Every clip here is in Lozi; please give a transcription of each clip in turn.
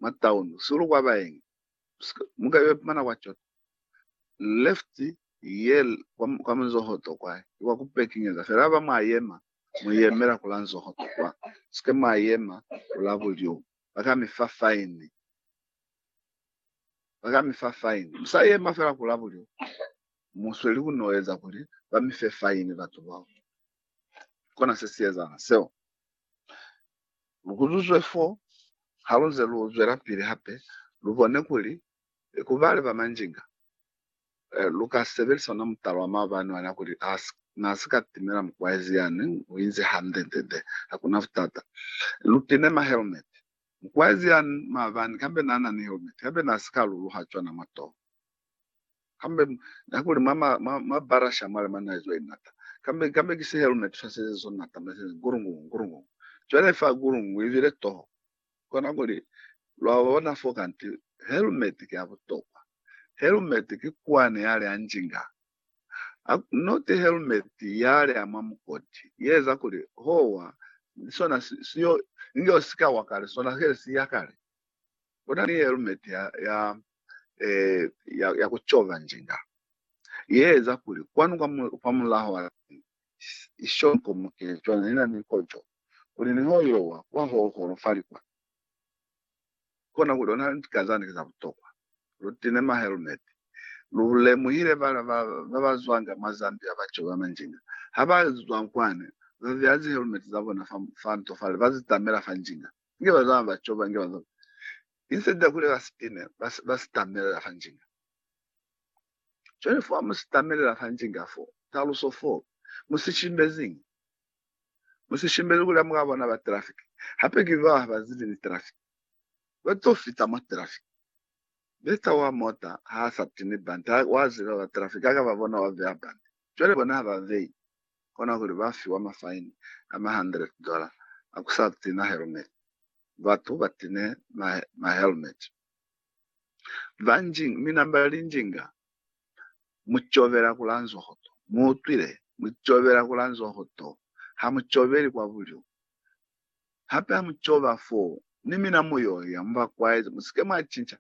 mwa town busihu kwa baengi muka yo ipumana kwa coto left ye kwa munzohoto kwa ki kwa ku pekinyeza fela haba mwa yema mu yemela kula nzohoto kwa sike mwa yema kula bulyo baka mi fa fine baka mi fa fine musa yema fela kula bulyo musweli ku no eza kuli ba mi fe fine batu bao kona se si ezala seo Lu kuzuzwe fo, halunze lu zwelapili hape, lu bone kuli ku bale ba manjinga lu ka sebelisa ona mutala wa maabani wa na kuli na si ka timela mukwaezi ya neng u inzi hande-nde-nde, hakuna butata. Lu pine ma helmet. Mukwaezi ya maabani kambe na na ni helmet, kambe na si ka luluha cwana mwa toho. Kambe, nakuli mwa ma, ma, ma barasha a mali mana izwa inata. Kambe, kambe ki sehelu ne tusaseze so nata mwa sene, gurungu, gurungu. Cwale fa gurungu ibile toho. Kona kuli, lwa bona fo kanti, helmet ki ya butokwa. Helmet ki kwani yale ya njinga. A, not helmet yale ya mwa mukoti, ye eza kuli, howa, sona si, si yo, inge usika wa kale, sona kele si ya kale. Kuna ni helmet ya, ya, eh, ya, ya kucova njinga, yeeza kuli kwanu kwa, mu, kwa mulaho wa lani ishonkomoke. Cwana nina ni kojo, kuli niho ilowa kwa ho holofalikwa, kona kuli ona lika zani ki za butokwa. Lu tine ma helmet. Lu lemuhile bala ba, ba ba zwanga mwa Zambia ba cova manjinga. Ha ba zwa kwani, ba beya zi helmet za bona fa, fa nto fale, ba zi tamela fa njinga. Inge ba zama ba coba, inge ba zama. Instead ya kuli ba spine, ba, ba sitamelela fa njinga. Cwale fo ha mu sitamelela fa njinga fo, taluso fo, mu si shimbeziñi? Mu si shimbezi kuli ha mu ka bona ba traffic. Hape ki bao ha ba zibi ni traffic. Ba to fita mwa traffic. Beta wa mota ha a sa tini bante, wa ziba ba traffic, ha ka ba bona wa veha bante. Cwale bona ha ba vehi. kona kuli ba fiwa mafaini a ma hundred dollar a ku sa tina helmet. Batu ba tine ma helmet ba njinga, mi namba li njinga. Mu cobela ku la nzoho to. Mu utwile? Mu cobela ku la nzoho to. Ha mu cobeli kwa bulyo. Hape ha mu coba foo, ni mina mu yo ya mu ba kwaezi. Mu si ke mwa cinca.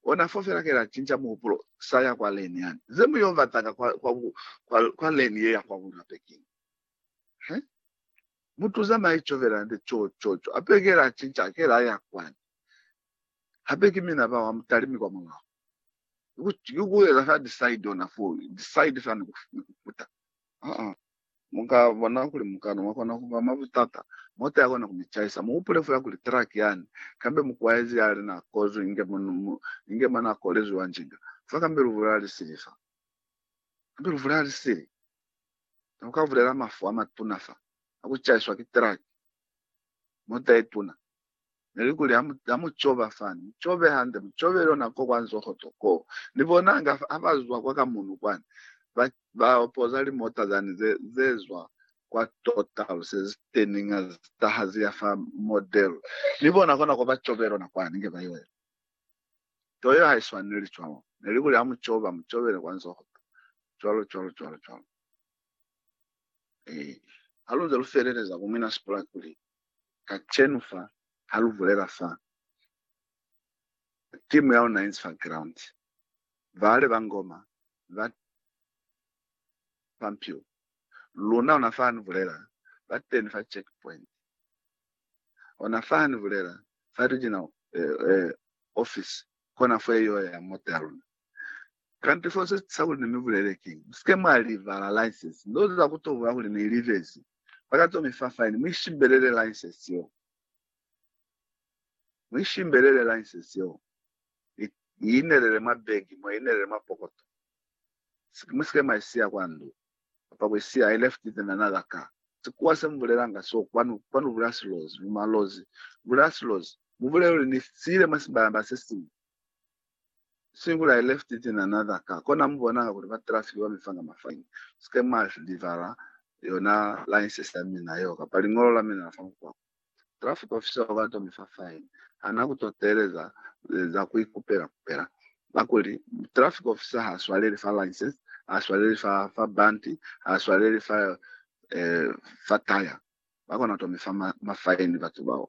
Ona fo fela kela cinca muhupulo sa ya kwa leni yani. Ze mu yo batanga kwa, kwa, kwa, kwa leni ye ya kwa bulape kiñi? He? Mutu zamai covela nde co, co, co. Ape kela cinca, kela ya kwani. Hape ki mina bao amutali mi kwa mulaho. Ki ku, ki ku eza fa decide ona fo, decide fa ni ku, ni ku kuta. Uh-uh. Mu ka bona kuli mukana wa kona ku ba mwa butata, mota ya kona ku mi caisa. Mu hupule fela kuli truck yani, kambe mukwaezi yali na kozwi inge mo, inge mo na kolezwi wa njinga fa, kambe luvule la li sili fa. Kambe luvule la li sili. Ne ku ka bulela mafu a matuna fa, a ku caiswa ki truck, mota ye tuna. Neli kuli, Ha mu coba fani, mu cobe hande, mu cobe lona ko kwa nzoho to koo. Ni bonanga fa, ha ba zwa kwa kamunu kwani, ba, ba poza limota zani ze, ze zwa kwa Total, se zi teninga, zi taha zi ya fa Model. Ni bona kona ko ba cobe lona kwani, nge ba yo ela. Toyo ha i swaneli cwalo. Neli kuli, Ha mu coba, mu cobele kwa nzoho to. Cwalo, cwalo, cwalo, cwalo. Ee. Ha lu nze lu feleleza ku mina sipulaki kuli, Kacenu fa, ha lu bulela fa timu ya luna inzi fa ground, baale ba ngoma ba Pampio, luna ona fa ni bulela, ba teni fa check point. Ona fa ha ni bulela fa regional eh, eh, office, kona fo ye yo ya mota ya luna. Kanti fo se sa kuli ne mi bulele ki, Musike mwa li vala license. Ndo za ku to bula kuli ne li vezi. Ba ka to mi fa fine. Mu ishimbelele license yeo. Mu ishimbelele license yeo. I, i inelele mwa begi, mwa inelele mwa pokoto. Sike, musike mwa isiya kwa ndu. Kapa ku isiya, I left it in another car. Sikuwa se mu bulelanga so, kwanu, kwanu bula silozi, mu malozi. Bula silozi. Mu bulele kuli ni siile mwa sibalamba se siñwi. Singular, left it in another car. Kona mu bona hakuli ba traffic ba mi fanga mafine. Sike mwa deliver yona license ya mina yeo kapa liñolo la mina la fa mukwako. Traffic officer o ka to mi fa fine. Ha na ku to teeleza za ku ikupela kupela. Kakuli traffic officer ha swaleli fa license, ha swaleli fa, fa band, ha swaleli fa, eh, fa tire. Ba kona to mi fa ma, mafine batu bao.